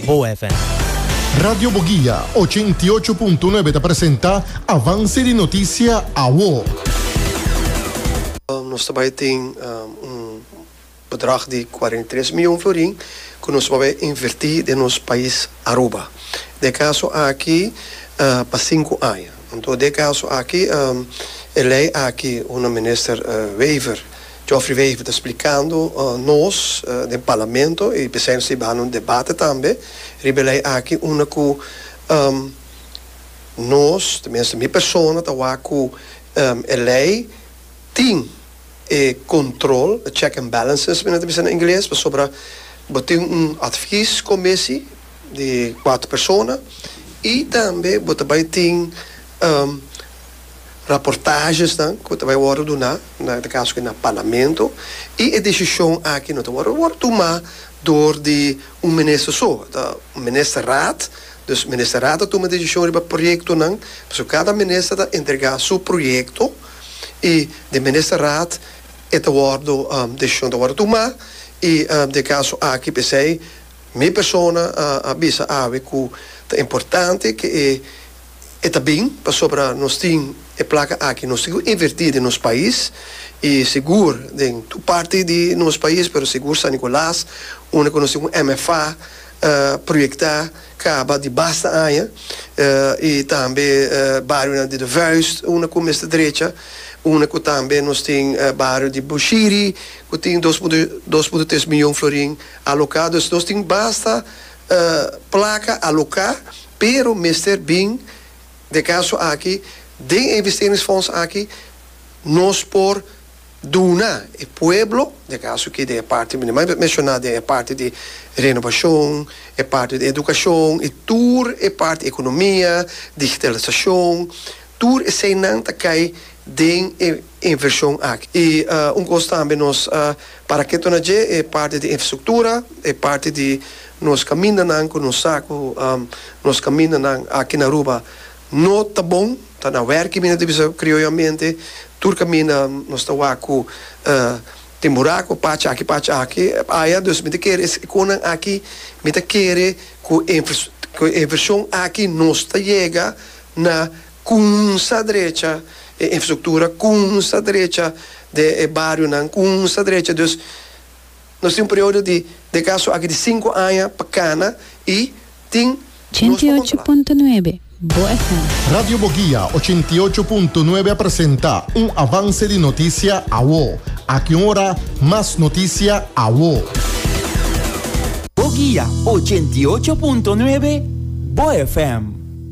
Boa FM. Radio Boguia ochenta i ocho punto nuebe ta presenta Avance di Noticia Awo. Nos ta bai tin un bedrag di kuarenta i tres mion florin ku nos por bai invertí den nos pais Aruba. Dje kaso aki pa sinku aña. Anto dje kaso aki e lei aki, honorable Minister Wever, Geoffrey Wever ta splikando nos den Parlamento y p'esei nos ta a baha un debate tambe riba e ley aki unda cu nos, tenminste mi persona, ta wak cu e ley tin e control, the check and balances mi nan ta bisa na ingles, pasobra bo tin un advies commissie di cuater persona y tambe bo ta bay tin. raportajesnan ku ta bai wòrdu duná na e kaso aki na parlamento i e desishon aki no ta wòrdu wòrdu tumá dor di un minister so. Ta un ministerraad, dus ministerraad ta tuma desishon riba proyektonan. Pasobra kada minister ta entregá su proyekto i den ministerraad e ta wòrdu desishon ta wòrdu tumá i den e kaso aki p'esei mi persona a bisa awe ku ta importante ku e E ta bin pasobra nos tin e plaka aki. Nos tin cu inverti den nos pais y sigur den tur parti di nos pais pero sigur San Nicolas unda cu nos tin un MFA proyecta caba di basta aña y tambe barionan di de Vuist unda cu mester drecha unda cu tambe nos tin bario di Bushiri cu tin dos punto dos punto tres miyon florin aloca. Dus nos tin basta placa aloca pero mester bin den caso aki den e investeringsfonds aki nos por duna e pueblo den caso aki den e parti mi na menciona den e parti di renovacion e parti di educacion y tur e parti economia digitalisacion tur esey nan ta cay den e invershon aki. I un kos tambe nos parak'é torna dje e parti di infrastruktura, e parti di nos kamindanan ku nos sa ku nos kamindanan aki na Aruba no ta bon, ta na wèrk'i mi no ta bisa krioyomente, tur kaminda nos ta wak ku tin buraku pachi aki pachi aki aya, dus mi ta kere es konan aki mi ta kere ku e invershon aki nos ta yega na. Kunsa drecha e infrastruktura, kunsa drecha de e barionan, kunsa drecha. Dus nos tin un periodo di de kaso aki di sinku aña pa kana i tin nos pa kontrolá. 88.9 Bo FM. Radio Bogia ochenta i ocho punto nuebe a presenta un avance di noticia awo. Aki un ora mas noticia awo. Bogia ochenta i ocho punto nuebe Bo FM.